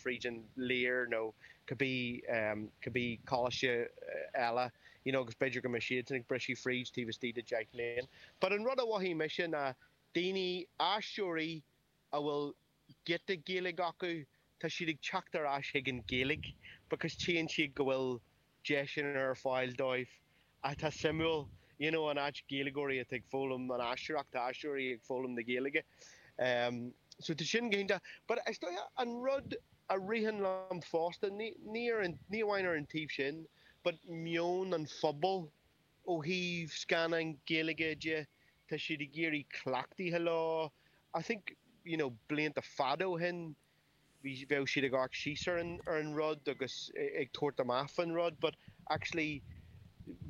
fríd an Lir nó cibé coláiste eile you know agus b'fhéidir go mbeidh siadsan ag briseadh fríd taobh istigh de deich mbliana but an rud a mhothaigh mise ná daoine, aisteoirí a bhfuil giota Gaeilge acu, tá siad ag teacht ar ais chuig an Ghaeilge because tchíonn siad go bhfuil deiseanna ar fáil dóibh atá suimiúil, you know an áit Gaeilgeoirí atá ag foghlaim an aisteoireacht, tá aisteoirí ag foghlaim na Gaeilge ehm so tá sin go hiontach but is dócha an rud a ritheann liom fosta, ní ní ar an, ní amháin ar an taobh sin but meon an phobail ó thaobh scannáin Gaeilge de, tá siad ag éirí cleachtaithe leo, I think you know blianta fada ó shin, bheadh siad ag amharc síos ar an ar an rud agus ag tabhairt amach faoin rud but actually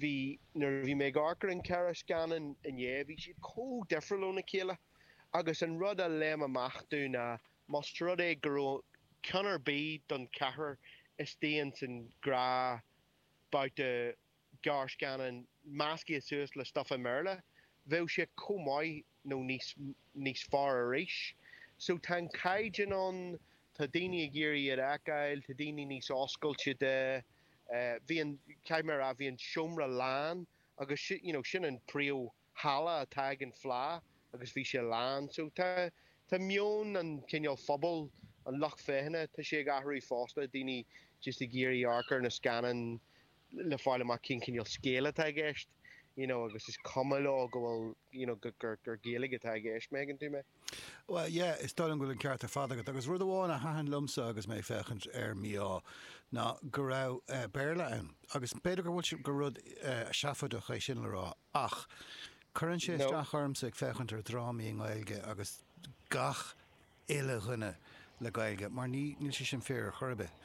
bhí nuair a bhí mé ag amharc ar an ceithre scannán inné bhí siad chomh difriúil óna chéile agus an rud a léim amach dom ná más rud é go raibh ceann ar bith den cheathrar acu sin i ngrúpa babhta gearrscannán meascaithe suas le stuif i mBéarla, bheadh sé chomh maith nó níos níos fearr arís. So tá an caighdeán ann, tá daoine ag iarraidh iad a fheiceáil, tá daoine níos oscailte de. Bhí an, caithfidh mé a rá, bhí an seomra lán agus you know sin an príomh, halla atá ag an Fleadh agus bhí sé lán so tá, tá meon an cineál phobal, an lucht féachana, tá sé ag athrú fosta, daoine just ag iarraidh amharc ar na scannáin le fáil amach cén cineál scéal atá i gceist you know agus is cuma leo go bhfuil you know go, gur, gur Gaeilge atá i gceist, an dtuigeann tú mé? Bhuel yeah, is dóigh liom go bhfuil an ceart ar fad agat agus rud amháin a thaitin liomsa agus mé ag féachaint ar Mí-Ádh ná go raibh eh Béarla ann agus b'fhéidir go bhfuil sé, gur rud eh seafóideach é sin le rá, Ach cuireann sé isteach ormsa ag féachaint ar dhrámaí i nGaeilge agus gach uile dhuine le Gaeilge mar níl sé sin fíor ar chor ar bith.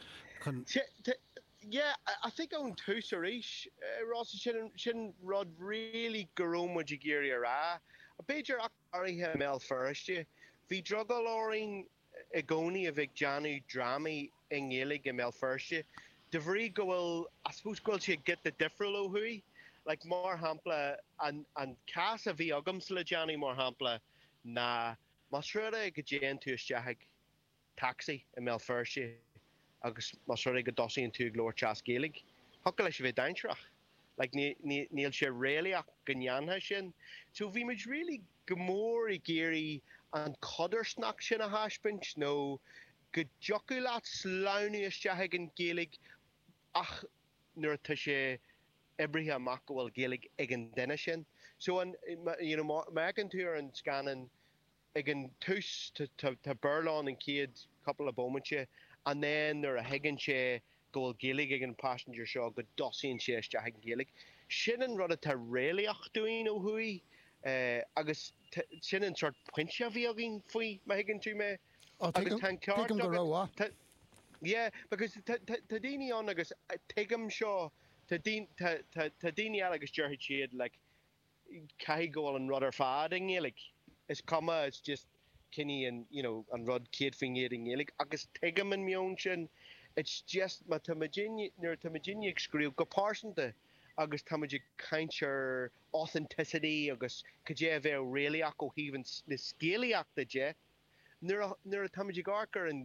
Yeah, I think ón tús arís, Rossa, sin sin rud really go raibh muid ag iarraidh a rá. B'fhéidir ach go háirithe i mBéal Feirste, bhí drogall orainn i gcónaí a bheith ag déanamh drámaí i nGaeilge i mBéal Feirste de bhrí go bhfuil, I suppose, go bhfuil sé giota difriúil ó thuaidh. Like, mar shampla, an, an cás a bhí agamsa le déanaí, mar shampla, ná más rud é go dtéann tú isteach ag taxi i mBéal Feirste agus más rud é go dtosaíonn tú ag labhairt as Gaeilge, thiocfadh leis a bheith dainséarach. Like, ní, ní, níl sé réalaíoch go ndéanfá sin. So bhí muid really. go mór ag iarraidh an codarsnacht sin a thaispeáint nó go dtiocfadh leat sleamhnú isteach ag an Ghaeilge ach nuair atá sé oibrithe amach go bhfuil Gaeilge ag an duine sin. So, you know, má fheiceann tú ar an scannán ag an tús tá Béarla ann an chéad couple of bómainte and then nuair a thuigeann sé go bhfuil Gaeilge ag an passenger seo, go dtosaíonn sé isteach ag an Ghaeilge. Sin an rud atá réalaíoch dúinn ó thuaidh agus sin an sórt pointe a bhí againn faoi, má thuigeann tú mé. Ó, tuigim go rómhaith. Yeah, because tá daoine ann agus tuigim seo, tá daoine eile agus déarfaidh siad like, caithfidh go bhfuil an rud ar fad i nGaeilge, is cuma, it's just cinn í an, you know, an rud 100% i nGaeilge agus tuigim an meon sin, it's just má tá muid in, nuair atá muidinne ag scríobh go pearsanta agus tá muid ag caint ar authenticity agus cad é a bheadh réalaíoch ó thaobh an, na scéalaíochta de, nuair a, nuair atá muid ag amharc ar an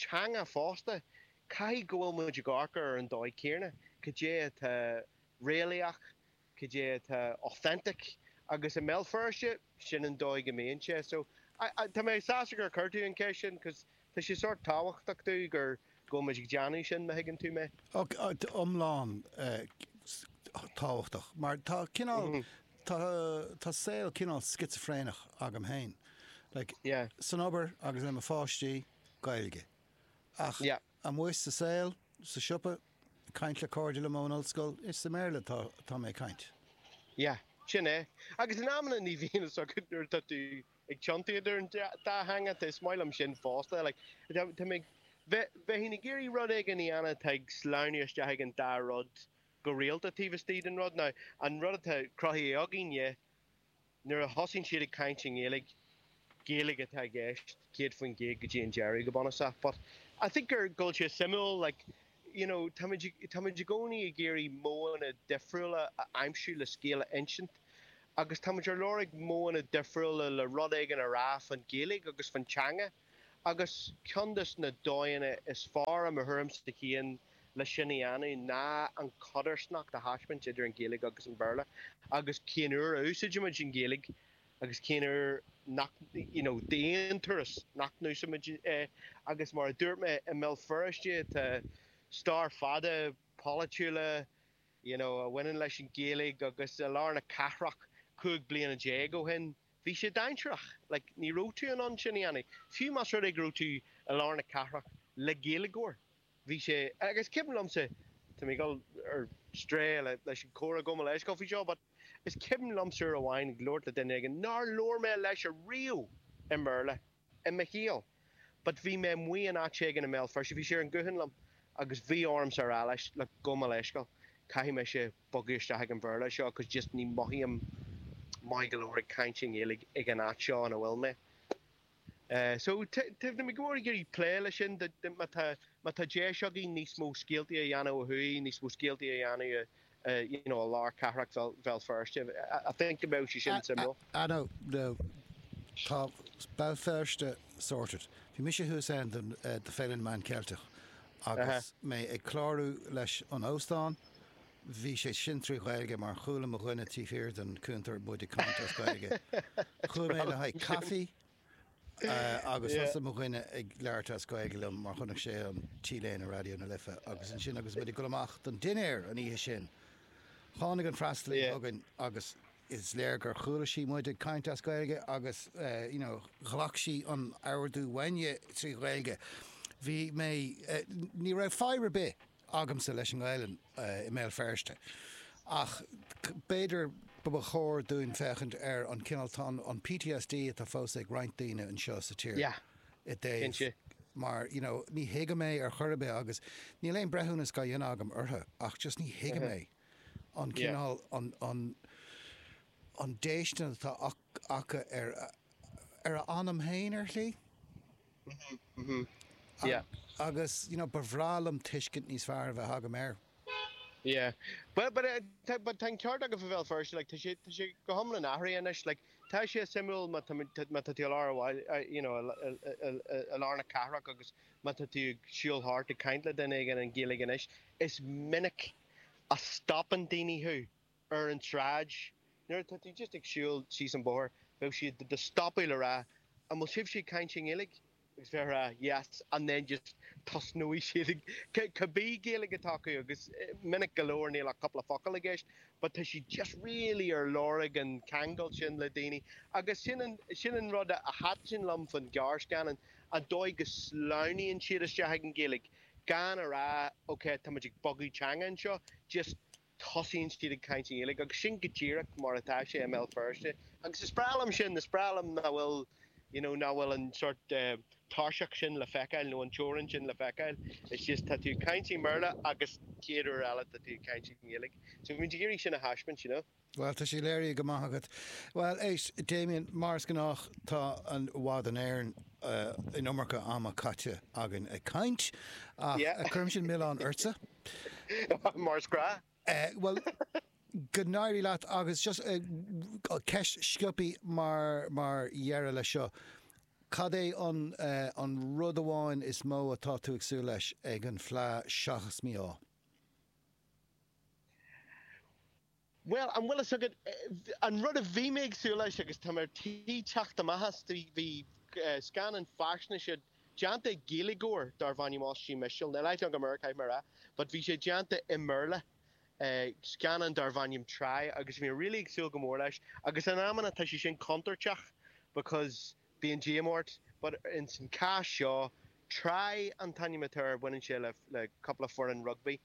teanga fosta, caithfidh go bhfuil muid ag amharc ar an dóigh chéanna, cad é atá réalaíoch, cad é atá authentic agus i mBéal Feirste sin an dóigh go mbíonn sé so tá mé sásta gur chuir tú an cheist sin cos tá sé sórt tábhachtach dúinn gur go bhfuil muid ag déanamh sin má thuigeann tú mé. iomlán tábhachtach mar tá cineál tá tá saol cineál scitsifréineach agam féin like san obair agus le mo pháistí Gaeilge ach Amuigh sa saol, sa siopa, ag caint le cairde liom ón ollscoil, is i mBéarla atá mé ag caint. Yeah, sin é. Agus in amanna ní bhíonn fhios agat nuair atá tú ag tiontú idir an dá theanga, tá is maith liom sin fosta, like táimid, bheadh muid ag iarraidh rud éigin a dhéanamh atá ag sleamhnú isteach ag an dá rud go rialta taobh istigh den rud. Now an rud atá cruthaithe againn, yeah, nuair a thosaíonn siad ag caint i nGaeilge, Gaeilge atá i gceist 100% go dtí an deireadh, go bunúsach. But I think gur, go bhfuil sé suimiúil, like, you know, táimid, táimid i gcónaí ag iarraidh modhanna difriúla a aimsiú le scéal a insint agus táimid ar lorg modhanna difriúla le rud éigin a rá fán Ghaeilge agus fán teanga. agus ceann de na dóigheanna is fearr, i mo thuairimse féin, le sin a dhéanamh ná an chodarsnacht a thaispeáint idir an Ghaeilge agus an Béarla agus cén uair a úsáidimid an Ghaeilge agus cén uair nach, you know, d'aon turas, nach n-úsáidimid í. Agus mar a dúirt mé, i mBéal Feirste tá stair fada polaitiúil, you know, a bhaineann leis an Ghaeilge agus i lár na cathrach cúig bliana déag ó shin, Bhí sé dainsearach, like, ní raibh tú in ann sin a dhéanamh, fiú más rud é go raibh tú i lár na cathrach le Gaeilgeoir, bhí sé, agus is cuimhin liomsa, tá mé ag dul ar strae leis an gcomhrá gabh mo leithscéal faoi seo, but is cuimhin liomsa uair amháin ag labhairt le duine éigin nár labhair mé leis a riamh i mBéarla. i mo shaol but bhí mé amuigh in áit éigin i mBéal Feirste, bhí sé ar an ghuthán liom agus bhí orm a rá leis look gabh mo leithscéal caithfidh mise bogadh isteach ag an Bhéarla seo cause just ní mhothaím maith go leor ag caint i nGaeilge ag an áit seo ina bhfuil mé eh so táimid go mór ag iarraidh plé leis sin má tá má tá deis againn níos mó scéaltaí a dhéanamh ó thuaidh níos mó scéaltaí a dhéanamh i you know, i lár cathrach Bhéal Feirste, I think go mbeadh sé sin suimiúil. Ah no, no, tá Béal Feirste sorted. Bhí mise thuas ann don Fhéile na Meán Ceilteach agus mé ag clárú leis an óstán, bhí sé sin trí Ghaeilge mar chuala mo dhuine taobh thiar den chuntar muid ag caint as Gaeilge. Chuaigh mé le haghaidh caife Eh, agus thosaigh mo dhuine ag labhairt as Gaeilge liom mar chonaic sé an T-léine Raidió na Life agus ansin agus muid ag dul amach don dinnéar an oíche sin. Tháinig an freastalaí Yeah. chugainn agus is léir gur chuala sí muid ag caint as Gaeilge agus eh, you know, ghlac sí an t-ordú uainn trí Ghaeilge. Bhí mé, eh, ní raibh fadhb ar bith agamsa leis an nGaelainn i mBéal Feirste ach b'fhéidir ba chóir dúinn féachaint ar an cineál, tá an PTSD atá fós ag roinnt daoine anseo sa tír i dtaobh mar you know ní thuigim é ar chor ar bith agus níl aon breithiúnas á dhéanamh agam orthu ach just ní thuigim é an cineál, an, an, an déistin atá acu ar a, ar a n-anam féin ar shlí. Mhm, mhm, yeah. Agus, you know, ba bhreá liom tuiscint níos fearr a bheith agam air. Yeah. Well, but, uh, but tá an ceart agat faoi Bhéal Feirste, like, tá sé, tá sé go hiomlán athraithe anois, like, tá sé suimiúil má tá, má tá tú i lár an bhaile, you know, i lár na cathrach agus má tá tú ag siúl thart ag caint le duine éigin i nGaeilge anois, is minic a stopann daoine thú. ar an tsráid, nuair atá tú just ag siúl síos an bóthar, beidh siad do do stopadh le rá An bhfuil sibhse ag caint i nGaeilge? agus bheith a rá Yes and then just tosnóidh siad ag, cibé Gaeilge atá acu agus minic go leor níl ach cúpla focal i gceist but tá siad just really ar lorg an ceangal sin le daoine agus sin an, sin an rud a thaitin liom faoin gearrscannán, an dóigh go sleamhnaíonn siad isteach ag an Ghaeilge gan a rá ok táimid ag bogadh teanga anseo just tosaíonn siad ag caint i nGaeilge agus sin go díreach mar atá sé i mBéal Feirste agus is breá liom sin, is breá liom nach bhfuil you know nach bhfuil an sort tairseach sin le feiceáil nó an teorainn sin le feiceáil, it's just tá tú ag caint i mBéarla agus chéad uair eile tá tú ag caint i nGaeilge so bhí muid ag iarraidh sin a thaispeáint you know. Bhuel tá sé léirithe go maith agat. Bhuel éist Damien, mar is gnách tá i bhfad Éireann an iomarca ama caite againn ag caint ach cuirimse an milleán ortsa. Yeah. Mar is gnáth. Bhuel, go n-éirí leat agus just ceist sciobtha mar dheireadh leis seo, cad é an rud amháin is mó atá tú ag súil leis ag an Fleadh seachas mí-ádh? Bhuel, an bhfuil fhios agat, an rud a bhí mé ag súil leis, agus tá mé ar tí teacht amach as, bhí scannán faisnéise déanta ag Gaeilgeoir darbh ainm Oisín Mistéil, now lifelong caithfidh mé a rá, but bhí sé déanta i mBéarla, scannán darbh ainm Try, agus bhí mé really ag súil go mór leis, agus in amanna tá sé sin contúirteach because. Bíonn díoma ort, but ins an cás seo, Try an t-ainm atá air, baineann sé le, le cúpla foireann rugbaí.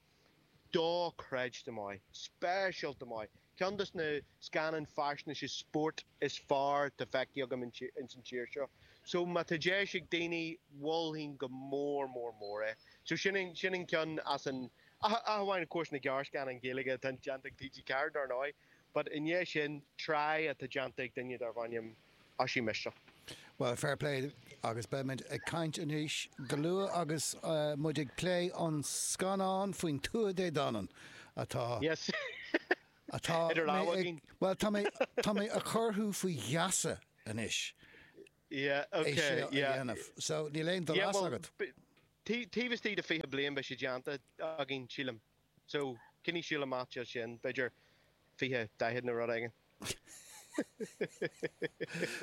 Do-chreidte maith. Speisialta maith. Ceann dos na scannáin faisnéise spóirt is fearr tá feicthe agam in, ins an tír seo. So, má tá deis ag daoine, mholfainn go mór mór mór é. So, sin an, sin an ceann as an, ach, ach amháin, of course, na gearrscannáin Ghaeilge atá déanta ag TG4, dar ndóigh, but i ndiaidh sin, Try atá déanta ag duine darbh ainm, Oisín Mistéil. Bhuel, fair play agus beimid ag caint arís go luath agus muid ag plé an scannán faoin Tuatha Dé Danann atá, Yes! atá idir lámha ag, againn. bhuel, tá mé, tá mé a chur thú faoi gheasa anois Yeah, é okay, seo a yeah. dhéanamh. So, níl aon Yeah, dul as well, agat. b- tí- taobh istigh de 20 bliain beidh sé déanta againn, sílim. So, coinnigh súil amach dó sin, b'fhéidir fiche, daichead nó rud éigin.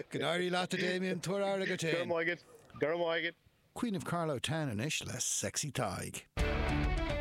Go n-éirí leat, a Damien, tabhair aire duit féin. Go raibh maith agat, go raibh maith agat. Queen of Carlow Town anois le Sexy Tadhg.